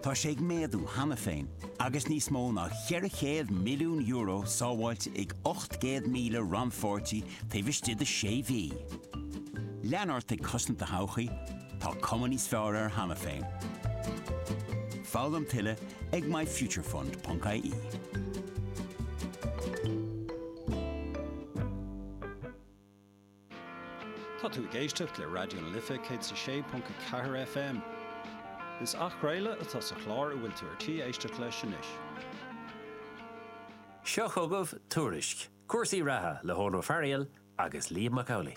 Tá sé ag méadú cheana féin agus níos mó ná €400 milliún sábháilte ag 800,000 rannpháirtí taobh istigh de sé mhí. Lean ort ag cosaint do thodhchaí, tá cuma níos fearr air cheana féin. Foghlaim tuilleadh ag myfuturefund.ie. Tá tú ag éisteacht le Raidió na Life 106.4 FM. Is athchraoladh atá sa chlár a bhfuil tú ar tí éisteacht leis anois. Seo chugaibh Tuairisc, cúrsaí reatha le hEoghan Ó Fearghaíl agus Liam Mac Amhlaigh.